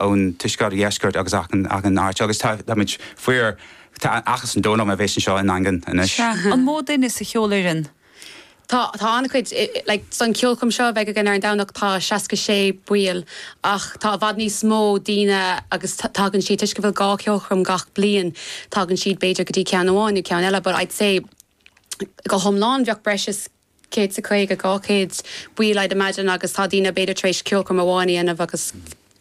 ón tuaisceart, dheisceart agus achan aird agus táimid fíorbhuíoch as an ndóigh a bheas anseo i nDaingean anois. Sea, an mó duine sa cheolfhoireann? Tá, tá an-chuid, like san ceolchoirm seo a bheidh againn ar an Domhnach tá seasca sé ball ach tá i bhfad níos mó daoine agus tagann siad, toisc go bhfuil dhá cheolchoirm gach bliain, tagann siad b'fhéidir go dtí ceann amháin nó ceann eile but I'd say go hiomlán bheadh breis is 150, 200 ball I'd imagine agus tá daoine b'fhéidir tar éis ceolchoirm amháin a dhéanamh agus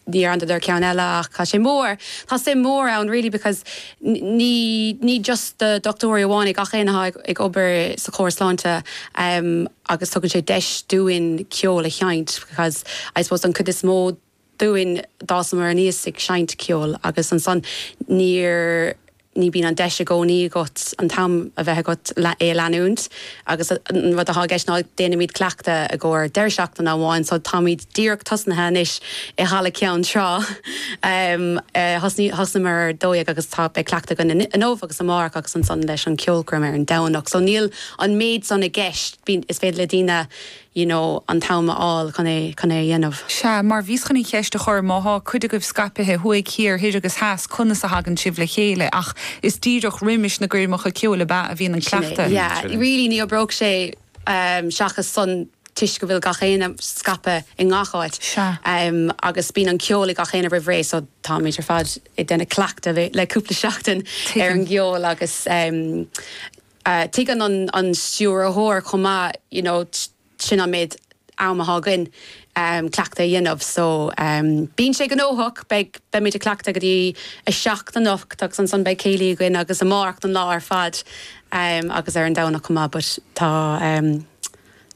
níor dheineadar ceann eile ach tá sé mór, tá suim mhór ann really because ní, ní just do dhochtúirí amháin é gach éinne atá ag obair sa chóras sláinte agus tugann sé deis dúinn ceol a sheinnt because I suppose don chuid is mó, dúinn, d'fhásamar aníos ag seinnt ceoil agus ansan níor, ní bíonn an deis i gcónaí agat an t-am a bheith agat é a leanúint agus an rud atá i gceist ná déanaimid cleachtadh i gcomhair deireadh seachtaine amháin so táimid díreach tosnaithe anois i Halla Cheann Trá, thosnaíomar ar a dó dhéag agus tá, beidh cleachtadh againn inniu agus amárach agus ansan leis an cheolchoirm ar an Domhnach so níl an méid san i gceist, bíonn, is féidir le daoine. you know an t-am a fháil chun é chun é a dhéanamh. Sea, mar bhíos chun an cheist a chur, má thá cuid agaibh scaipithe thuaidh thiar, thoir agus theas, conas a thagann sibh le chéile? Ach is díreach roimis na coirmeacha ceoil ab ea a bhíonn an Sin é, cleachtadh. yeah. Really ní oibreodh sé ehm seachas son toisc go bhfuil gach éinne scaipthe i ngach áit Sea. ehm agus bíonn an ceol ag gach éinne roimh ré so táimid ar fad ag déanamh cleachtadh le cúpla seachtain ar Tuigim. an gceol agus ehm Tuigeann an stiúrthóir chomh maith you know sin an méid am atá againn cleachtadh a dhéanamh so bíonn sé gnóthach, beidh, beimid ag cleachtadh go dtí a seacht anocht agus ansan beidh céilí againn agus amárach an lá ar fad agus ar an Domhnach chomh maith but tá em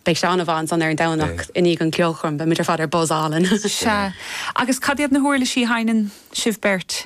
beidh sé an-mhaith ansan ar an Domhnach i ndiaidh an cheolchoirm beimid ar fad ar buzz álainn. Sea. Agus cad iad na huirlisí a sheinneann sibh beirt?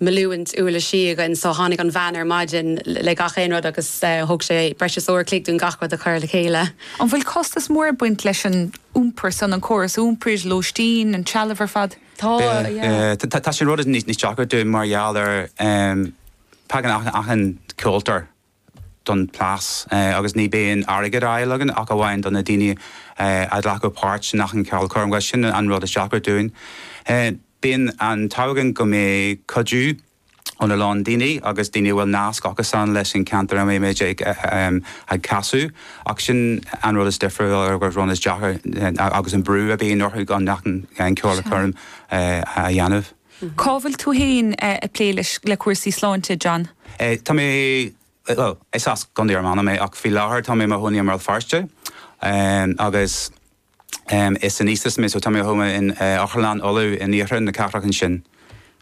na huirlisí againn so tháinig an veain ar maidin le gach aon rud agus thóg sé breis is uair a chloig dúinn gach rud a chur le chéile. An bhfuil costas mór ag baint leis an iompar san, an córas iompair, lóistín, an trealamh ar fad? Tá, yeah. Tá, sin an rud is deacra dúinn mar gheall ar tagann achan ceoltóir. don phléisiúr agus ní bhíonn airgead ar fáil againn ach amháin do na daoine a ghlacadh páirt in achan cheolchoirm agus sin an rud is deacra dúinn. Bíonn an t-ádh againn go mbeidh cuidiú ó a lán daoine agus daoine a bhfuil nasc acu féin leis an cheantar a mbeimid ag casadh ach sin an rud is difriúla agus an rud is deacra agus an brú a bhíonn orainn go achan cheolchoirm a dhéanamh. Cá bhfuil tú féin ag plé leis le cúrsaí sláinte, John? Tá mé, bhuel, is as Contae Fhear Manach mé ach faoi láthair tá mé i mo chónaí i mBéal Feirste agus is ainéistéisí mé so tá mé ó thuaidh in Otharlann Uladh in oirthear na cathrach ansin.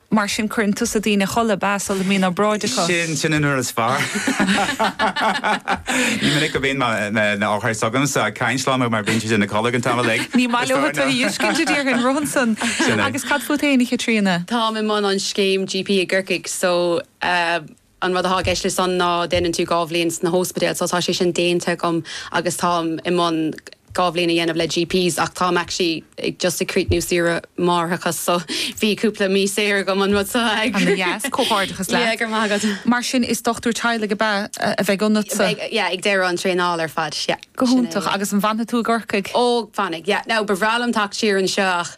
Mar sin cuireann tú na daoine a chodladh, ba as Uladh Mí ná bráid acu. Sin, sin an uair is fearr. Ní minic a bhíonn na hothair seo agamsa ag caint liom mar bíonn siad ina gcodladh ag an tamall ag. Ní maith leo tuilleadh dheiscirt a d'iarr an rud ansan. Sin é. Cad fút fhéin, a Chaitríona? Táim i mbun an scéim GP i gCorcaigh so an rud atá i gceist le san ná déanann tú dhá bhliain sna hóspidéil so tá sé sin déanta agam agus táim i mbun dhá bhliain a dhéanamh le GP's ach táim actually just ag críochnú saoire máithreachas so bhí cúpla mí saor agam ón rud so ag Ana dheas, comhghairdeachas yeah leat. go raibh maith agat. Mar sin is dochtúir teaghlaigh ab ea a bheidh ionatsa? Beidh yeah ag deireadh an traenáil ar fad yeah. Go hiontach. Agus an bhfanfaidh tú i gCorcaigh? Ó, fanfaidh, yeah. Now, ba bhreá liom teacht siar anseo ach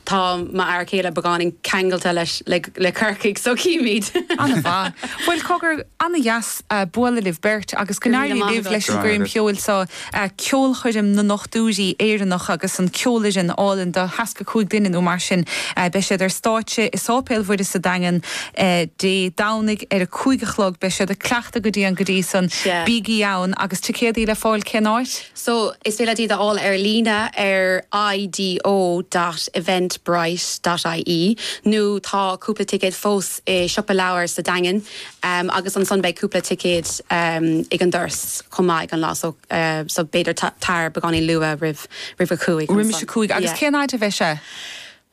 tá m'fhear céile beagáinín ceangailte leis, le Corcaigh, so cífimid. An-mhaith. Bhuel, cogar, ana-dheas bualadh libh beirt agus go n-éirí libh leis an gcoirm cheoil so, Ceolchoirm na nDochtúirí Éireannach agus an cheolfhoireann álainn de sheasca cúig duine nó mar sin. Beidh siad ar stáitse i Sáipéal Mhuire sa Daingean, Dé Domhnaigh ar a cúig a chlog. Beidh siad ag cleachtadh go dian go dtí san. Sea. Bígí ann! Agus ticéadaí le fáil cén áit? So, is féidir leat iad a fháil ar líne ar i-do dot eventbrite dot ie nó tá cúpla ticéad fós i Siopa Leabhar sa Daingean agus ansan beidh cúpla ticéad ag an doras chomh maith ag an lá so so b'fhéidir tar beagáinín luath roimh a cúig ansan. Roimis a cúig. Agus cén áit a bheidh sé?